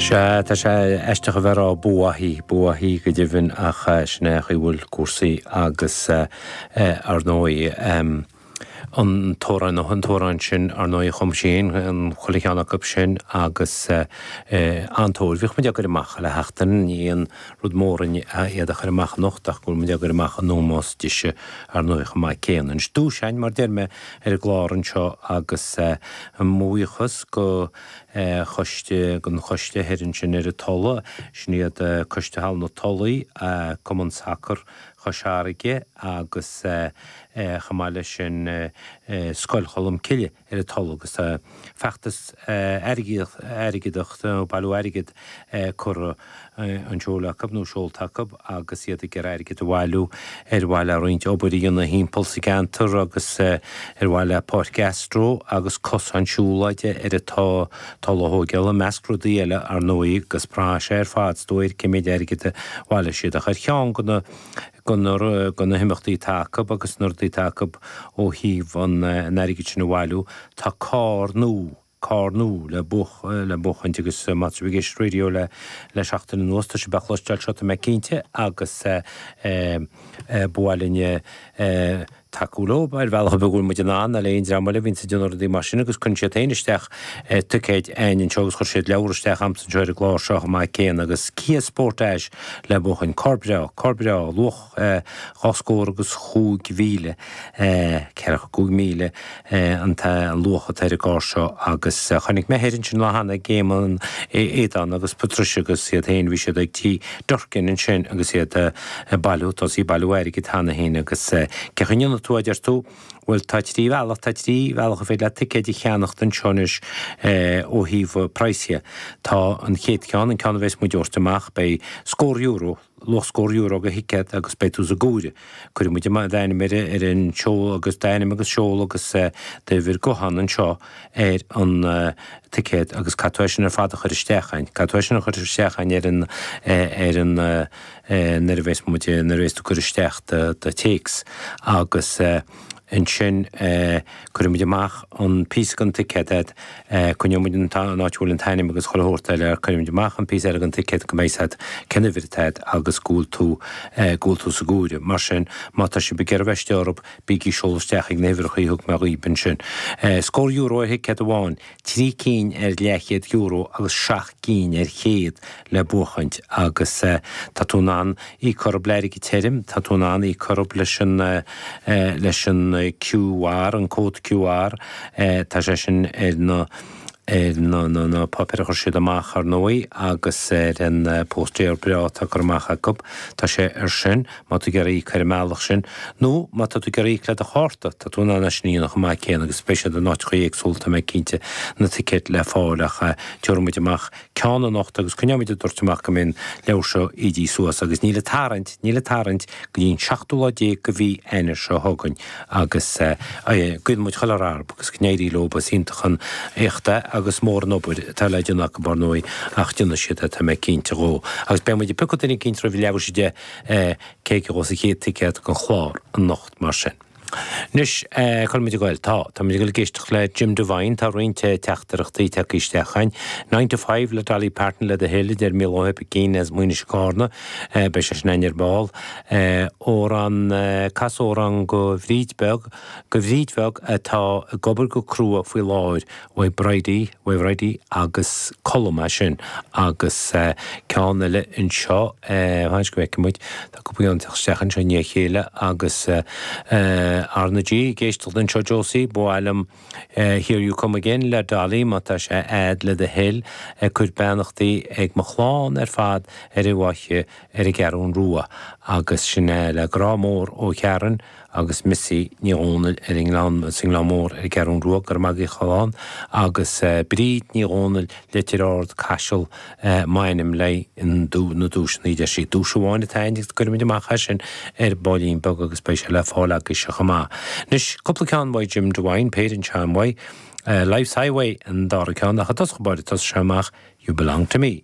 Sea, tá sé aisteach a bheith ag rá boo wattie, boo wattie go deimhin ach sin é an chaoi a bhfuil cúrsaí agus ar ndóigh an t-amhrán, an t-amhrán sin ar ndóigh chum sí fhéin chuile cheann acu sin agus an-tóir orthub. Bhíodh muid á gcur amach le seachtain, ní aon rud mór iad a chur amach anocht ach go bhfuil muid á gcur amach in ómós dise ar ndóigh chomh maith céanna. Anois dúshlán mar deir mé, ar an gclár anseo agus mo bhuíochas go Choiste, an coiste thoir ansin ar an Tulaigh, sin iad Coiste Halla na Tulaí, Cumann Sacar Chois Fharraige agus chomh maith leis sin Scoil Cholm Cille ar an Tulaigh agus feachtas airgeadach, bailiú airgid, Curtha, á sheoladh acu, nó seolta acu, agus iad ag iarraidh airgid a bhailiú ar mhaithe le roinnt obair a dhéanamh thimpeall sa gceantar agus ar mhaithe le páirc astro agus cosáin siúlóide ar an Tulaigh a thógáil, i measc rudaí eile, ar ndóigh, agus braitheann sé ar fad is dóigh ar cén méid airgid a bhaileos siad. Ach ar cheann de na himeachtaí atá acu agus na rudaí atá acu ó thaobh an airgid sin a bhailiú, tá carr nua. Carr nua le le buachaint agus má tá sibh ag éisteacht leis an raidió le seachtain anuas tá sibh a' chloisteáil seo tá mé cinnte agus ba mhaith linn tacú leob ar bhealach ar bith go bhfuil muid in ann, le aon dream eile a bhíonns ag déanamh rudaí mar sin agus chuir siad féin isteach ticéid a'inn anseo agus chuir siad leabhar isteach a'msa anseo ar an gclár seo chomh maith céanna agus Kia Sportage le buachaint, carr breá, carr breá, luach. dhá scór agus chúig mhíle, ceathracha cúig míle an luach atá ar an gcarr seo agus chonaic mé thoir ansin lá cheana ag Éamon, Aodán agus Patricia agus iad féin, bhí siad ag tí Durkin ansin agus iad ag bailiú, tosaithe ag bailiú airgid cheana féin agus cé chaoi a ndéanfaidh tú, a deir tú, bhuel tá trí bhealach, tá trí bhealach ar féidir leat ticéid a cheannacht anseo anois ó thaobh praghas dhe. Tá an chéad cheann, an ceann a bheas muid a thabhairt amach, beidh scór euro, luach scór euro go thicéad agus beidh tú sa gcoire. Cuirfidh muid d'ainm ar an seoladh agus d'ainm agus seoladh agus d'uimhir guthán anseo ar an ticéad agus caithfidh tú é sin ar fad a chur isteach a'inn. Caithfidh tú é sin a chur isteach a'inn ar an, ar an, nuair a bheas muid, nuair a bheas tú ag cur isteach do téacs agus, ansin cuirfidh muid amach an píosa den ticéad, coinneoidh muid an áit a bhfuil an t-ainm agus chuile shórt eile, cuirfidh muid amach an píosa eile den ticéad go mbeidh a fhios a'd, cén uimhir atá a'd agus go bhfuil tú, go bhfuil tú sa gcoire. Mar sin, má tá sibh ag iarraidh bheith istigh orthub, bígí ag seoladh isteach ag na huimhreacha a thug mé dhaoib ansin. Scór euro ar thicéad amháin, trí cinn ar leathchéad euro agus seacht gcinn ar chéad le buachaint agus tá tú in ann í a ceannacht le airgead tirim, tá tú in ann í a ceannacht leis an leis an QR, an cód QR, tá sé sin ar na ar na na na páipéir a chuir siad amach ar ndóigh agus ar an bpóstaer breá atá curtha amach acu, tá sé ar sin. Má tá tú ag iarraidh íoc ar an mbealach sin, nó má tá tú ag iarraidh íoc le do chárta, tá tú in ann é sin a dhéanamh chomh maith céanna agus beidh siad in áiteacha éagsúla, tá mé cinnte, na ticéid le fáil ach tabharfaidh muid amach ceann anocht agus coinneoimid ag tabhairt amach go mbeidh an leabhar seo ídithe suas agus níl an tarraingt, níl an tarraingt go dtí an seachtú lá déag de mhí Eanáir seo chugainn agus guíonn muid chuile rath orthu agus go n-éirí leo, ba iontach an éacht é agus mór an obair atá le déanamh acu ar ndóigh ach déanfaidh siad é, tá mé cinnte dhe. Agus beidh muid ag piocadh duine eicínt roimh leathuair tar éis a deich eh, cé a gheobhas an chéad ticéad don chlár anocht, mar sin. Anois, eh, cuirimid ag goil, tá, tá muid ag goil ag éisteacht le Jim Devine, tá roinnt eh, teachtaireachtaí ag teacht isteach againn, Nine to Five le Dolly Parton le do thoil, a deir Micheál Pheaitín as Maínis Carna, eh, beidh sé sin againn ar ball, eh, amhrán, eh, cas amhrán do Bhríd Bheag, do Bhríd Bheag atá ag obair go crua faoi láthair, uaidh Bhridie, uaidh Bhridie agus Colm as sin agus ceann eile anseo, fan go bhfeicfidh muid, tá cúpla ceann ag teacht isteach anseo i ndiaidh a chéile agus RnaG ag éisteacht anseo Josie, ba mhaith liom Here You Come Again le Dolly má tá sé agat le do thoil ag cur beannachtaí ag mo chlann ar fad ar an bhFaiche ar an gCeathrú Rua agus sin é le grá mór ó Sharon. agus Missy Ní Dhomhnaill ar an nGleann, sa nGleann Mór ar an gCeathrú Rua, Nóra Mhic Giolláin, agus Bríd Ní Dhomhnaill, Leitir Ard, Caiseal, m'ainm le haghaidh na nduaiseanna a deir sí. Duais amháin atá againn agus cuirfimid amach é sin ar baillín beag agus beidh sé le fáil agaibhse chomh maith. Anois, cúpla ceann uaidh Jim Devine, péire an-sean uaidh, Life's Highway an dara ceann ach i dtosach báire, tosóidh sé amach, You Belong To Me.